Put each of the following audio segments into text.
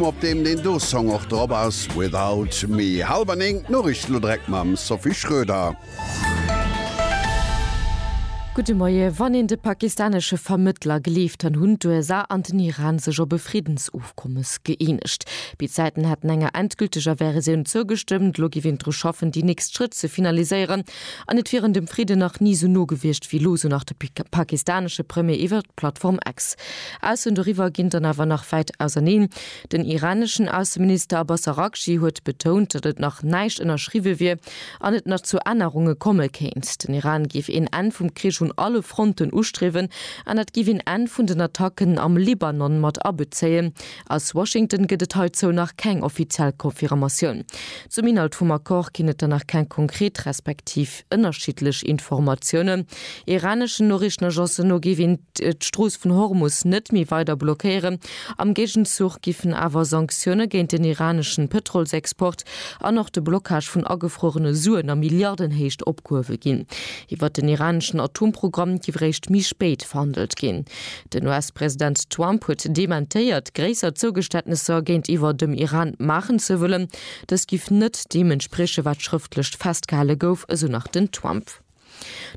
Op deem deen do Song och drop ass, Without Me. Halwer néng, d'Noriichten elo direkt mam Sophie Schroeder. Gudde Moie. Wann een de pakistanesche Vermëttler gleeft, dann hunn d'USA an den Iran sech op e Friddensofkommes gëeenegt. Béid Säiten hätten enger endgülteger Versioun zougestëmmt. Elo géif een dru schaffen, déi nächst Schrëtt ze finaliséieren. An et wieren dem Fridden nach ni sou no gewiescht wéi elo, sou nach de pakistanesche Premier iwwert d'Plattform X. Aussen doriwwer ginn dann awer nach wäit auserneen. Den iraneschen Ausseminister Abbas Araghchi huet betount, datt et nach näischt ënnerschriwwe wier an et nach zu Ännerunge komme kéint. Den Iran géif een Enn vum Krich un alle Fronten ustriewen an dat géif een Enn vun den Attacken am Libanon mat abezéien, Aus Washington gëtt et heizou nach keng offiziell Confirmatioun. Zum Inhalt vum Accord ginn et der nach keng konkret respektiv ënnerschiddlech Informatiounen. Iraneschen Noriichtenagencen no géif een d'Strooss vun Hormus net méi weider blockéieren. Am Géigenzuch giffen awer Sanktioune géint den iraneschen Pëtrolsexport an och de Blockage vun agefruerene Suen a Milliardenhéicht opgehuewe ginn. Iwwert den iraneschen Atomprogramm giff eréischt méi spéit verhandelt ginn. Den US-President Trump huet dementéiert, gréisser Zougeständnesser géintiwwer dem Iran maachen ze wëllen. Dës giff net deem entspriechen, wat schrëftlecht festgehale gouf, esou nach den Trump.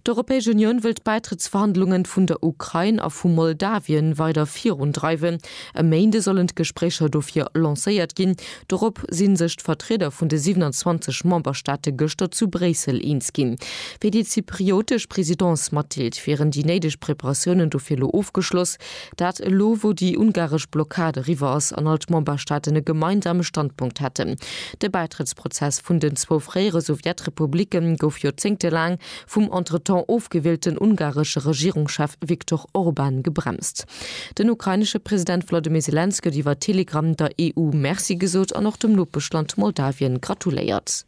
D'Europäesch Unioun wëll d'Bäitrëttsverhandlungen vun der Ukrain a vu Moldawien weider virundreiwen. E Méinde sollen d'Gespréicher dofir lancéiert ginn, Dorop si sech d'Vertrieder vun de 27 Memberstaate gëschter zu Bréissel eens ginn. Fir déi zypriotesch Presidence matdeelt, wieren déi néideg Preparatiounen dofir elo ofgeschloss, dat elo wou déi ungaresch Blockad eriwwer ass an all d'Memberstaaten e gemeinsame Standpunkt hätten. De Bäitrëttsprozess vun den zwou fréiere Sowjetrepublicke gouf joerzéngtelaang vum entretemps ofgewielten ungaresche Regierungschef Viktor Orban gebremst. Den ukrainesche President Volodymyr Selenskyj huet iwwer Telegram der EU Merci gesot an och dem Nopeschland Moldawien gratuléiert.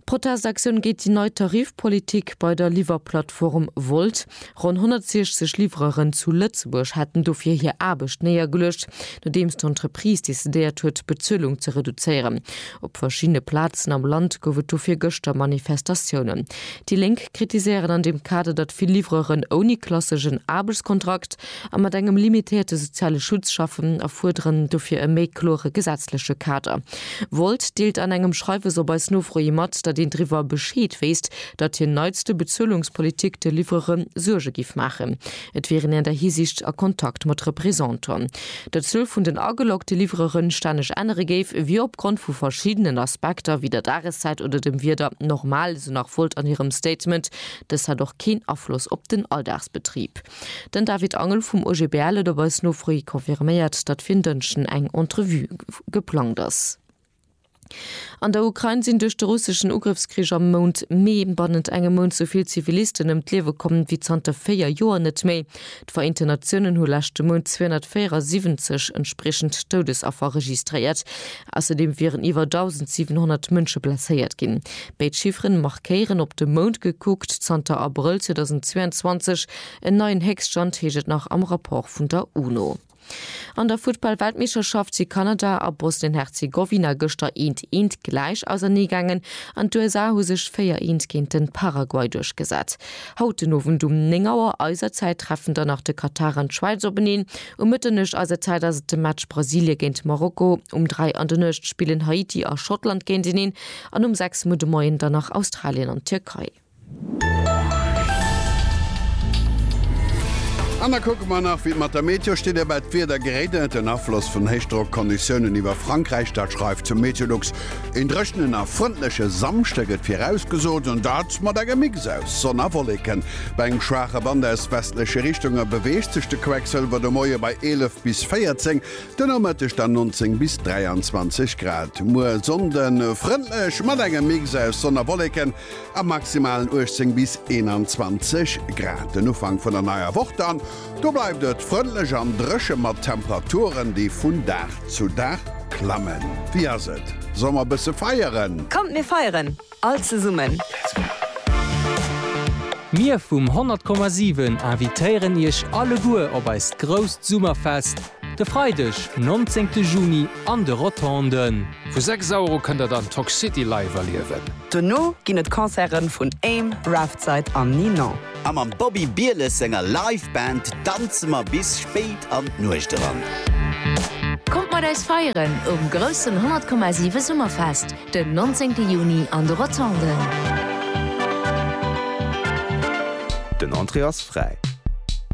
Protestaktioun géint déi nei Tarifpolitik bei der Liwwerplattform Wolt. Ronn 160 Livreuren zu Lëtzebuerg hätten dofir hir Aarbecht néiergeluecht, nodeems d'Entreprise decidéiert huet, d'Bezuelung ze reduzéieren. Op verschiddene Plazen am Land gouf et dofir gëschter Manifestatiounen. Déi Lénk kritiséieren an deem Kader, datt vill Livreuren ouni klasseschen Aarbechtskontrakt a mat engem limitéierte soziale Schutz schaffen a fuerderen dofir e méi klore gesetzleche Kader. Volt deelt an engem Schreiwes op eis Nofro hi mat, datt een driwwer Bescheed wéisst, datt hir neitste Bezuelungspolitik de Livrere Suerge géif maachen. Et wier een an där Hisiicht a Kontakt mat Representanten. Datt d'Zuel vun den ageloggte Livrere stänneg ännere géif, wier opgrond vu verschiddenen Aspekter, wéi der Dageszäit oder dem Wieder, normal, esou nach Volt an hirem Statement. Dëst hätt och keen Afloss op den Alldagsbetrib. Den David Angel vum OGBL huet op eis Nofro hi confirméiert, datt fir en Dënschden eng Entrevue geplangt ass. An der Ukrain sinn duerch de russeschen Ugrëffskrich am Mount Mee bannent engem Mount esou vill Zivilisten ëm d'Liewe komm wéi zanter véier Joer net méi. D'Vereenten Natiounen hu leschte Mount 274 entspriechend Doudesaffer registréiert. Ausserdeem wieren iwwer 1.700 Mënsche blesséiert ginn. Béid Chifferen markéieren, op de Mount gekuckt, zanter Abrëll 2022 en neien Héchststand, heescht et nach am Rapport vun der UNO. An der Futtball-Weltmeeschterschaft si Kanada a Bosnien-Herzegowina gëschter eent eent gläich auserneegaangen an d'USA hu sech 4 eent géint den Paraguay duerchgesat. Haut den Owend um 9 Auer eiser Zäit treffen dann nach de Katar an d'Schwäiz openeen. Um Mëtternuecht eiser Zäit ass et de Match Brasilie géint Marokko. Um 3 an der Nuecht spillen Haiti a Schottland géinteneen an um 6 Mu de Moien dann nach Australien an d'Tierkei. An da kucke mer nach, wéi et mat der Meteo steet. Dobäi d'Wieder geréit ënnert den Afloss vun Héichdrockkonditiounen iwwer Frankräich. Dat schreift zu Meteolux. Een dréchenen a frëndleche Samschde gëtt virausgesot, an dat mat engem Mix aus Sonn a Wolleken. Bei engem schwaache Wand aus westleche Richtunge beweegt sech de Quecksëlwer de Moie bei 11 bis 14, den Nomëtteg dann 19 bis 23 Grad. Muer Sonnden frëndlech mat engem Mix aus Sonn a Wolleken. A maximalen 18 bis 21 Grad den Ufank vun der neier Woch dann. Do bleift et frëndlech an dréche mat Temperaturen, déi vun Dag zu Dag klammen. Wéi ass et, soll mer e bësse feieren? Kommt mir feieren all zesummen! Mir vum 100,7 invitéieren Iech alleguer op eist grousst Summerfest. De Freideg 19 de Juni an de Rotonden. Vu 6 Euro kënnt der dann Tock City live erliewen. Dono ginn et Concerten vun Aim, Raftside an Ninon. A mam Bobby Bieles senger Live Band danze mer bis spéit an d'Nuecht eran. Kommt mat eis feieren um groussen 100,7 Summerfest den 19 Juni an de Rotonden. Den Entrée ass fräi.